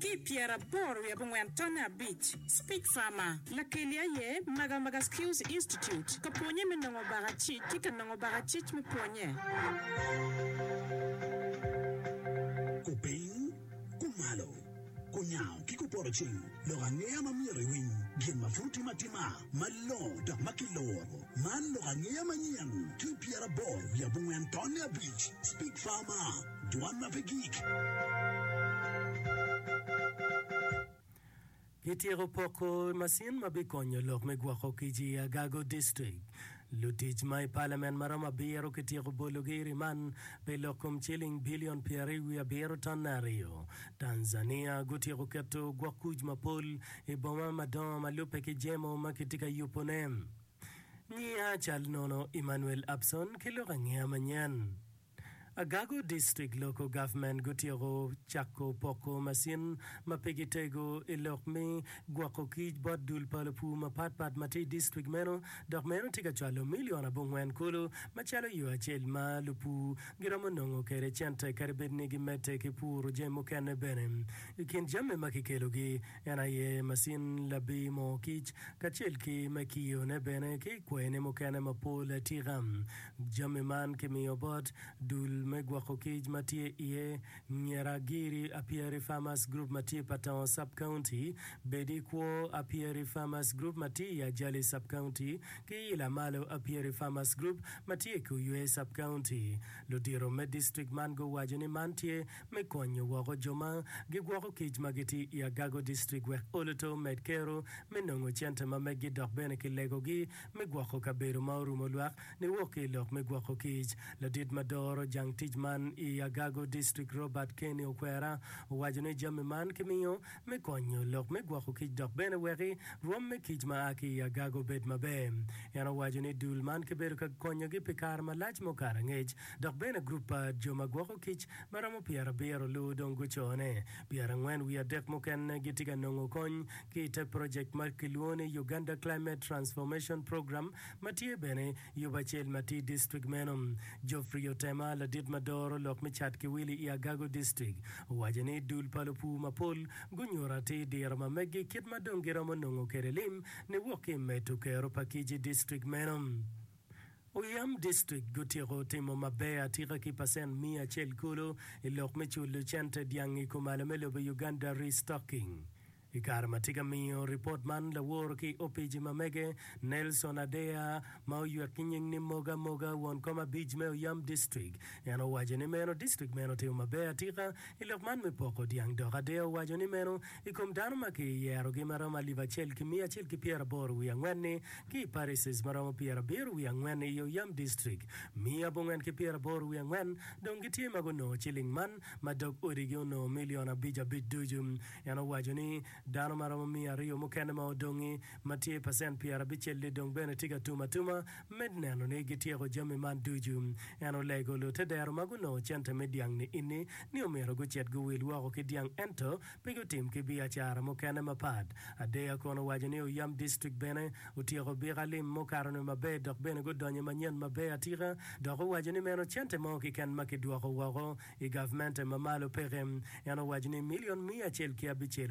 ki i pyeraboro wiye abongwen tonne abic, Speak Farmer. Lakeli aye Magamaga Skills Institute ka pwonye me nongo baka cic ki ka nongo baka cic me pwonye. Kupiny, kumalo, kunyango ki kupoto cing lok angeya ma myero iwiny gin ma pud tim atima malongo dok ma kiluro. Man lok angeya manyen ki i pyeraboro wiye abongwen tonne abic, Speak Farmer. dwan ma pe gik. Kityeko poko macin ma bikonyo lok me gwoko kic i Agago District. Lutic ma i Palamen ma romo abiro kityeko bologi i riman pi lok kom ciling bilion pyeraryo wiye abiro tonne aryo. Tanzania gutyeko keto gwok kuc mapol i boma madongo ma lubbe ki jemo ma kitye ka yubone. Ngiya cal nono Emmanuel Abson ki lok angeya manyen. Agago District Local Government gutyeko cako poko macin ma pe gitego i lok me gwoko kic bot dul pa lupur mapat pat ma tye i district meno dok meno tye ka cwalo milion abongwen kulu macalo yo acel ma lupur giromo nongo kwede cente kadi bed ni gimedde ki puro jami mukene bene. I kin jami ma kikelogi en aye macin labir moo kic kacel ki me kiyone bene ki kwayine mukene mapol atika. Jami man kimiyo bot dul me gwoko kic ma tye iye Nyera Giri Apieri Farmers Group ma tye Patongo Sub County, Bedi Kwo Apieri Farmers Group ma tye i Ajali Sub County, ki Ila Malo Apieri Farmers Group ma tye i Kuywe Sub County. Ludito me district man guwaco ni man tye me konyo woko jo ma gigwoko kic ma gitye i Agago District wek oluto omed kero me nongo cente ma meggi dok bene kilegogi me gwoko kabedo ma orumo lwak niwok ki i lok me gwoko kic. Ladit ma doro jang tic man i Agago District Robert Kenny Okwera owaco ni jami man kimiyo me konyo lok me gwoko kic dok bene weki rwom me kic ma a ki i Agago obed maber. En owaco ni dul man kibedo ka konyogi pi kare malac ma okato angec dok bene gurup pa jo ma gwoko kic ma romo pyerabiro luwu dong gucone Pyerangwen wiye adek mukene gitye ka nongo kony ki i te projekt ma kilwongo ni Uganda Climate Transformation Program ma tye bene Yuba acel ma tye i distrikt meno. Geoffrey Otema, ladit ma doro lok me cat ki wili i Agago Distrikt, owaco ni dul pa lupur mapol gunyuto atir diro ma meggi kit ma dong giromo nongo kwede lim niwok ki i medo kero pa kic i distrikt meno. Oyam District gutyeko timo maber atika ki pacent miya acel kulu i lok me culo cente dyang i kumalo me lobo Uganda Restocking. I kare ma tye ka miyo ripot man lawor ki opici ma mege, Nelson Adeya, ma oywek ki nying ni Moga Moga, won kom abic me Oyam District, en owaco ni meno District meno otimo maber atika I lok man me poko dyang dok ader owaco ni meno i kom dano ma ki yerogi ma romo alip acel ki miya acel ki pyera aboro wiye angwen ni ki i parishes ma romo pyera abiro wiye angwen i yo yam distrik miya abongwen ki pyera aboro wiye angwen dong gi tye ma gunongo ciling man ma dog odi gi onongo million abic abic ducu en owaco ni dano ma romo miya aryo mukene ma odongi ma tye pacent pyerabicelli dong bene tye ka tum atuma me neno ni gityeko jami man ducu. En olego lutedero ma gunongo cente me dyang ni-inni ni omyero gucit guwil woko ki dyang ento pe gutim ki biacara mukene mapat. Adeya kono owaco ni Oyam District bene otyeko bik alim mukato nwe maber dok bene gudonyo i manyen maber atika dok owaco ni meno cente mo kiken ma kidwoko woko i gavmente ma malo peke. En owaco ni milion miya acel ki abicel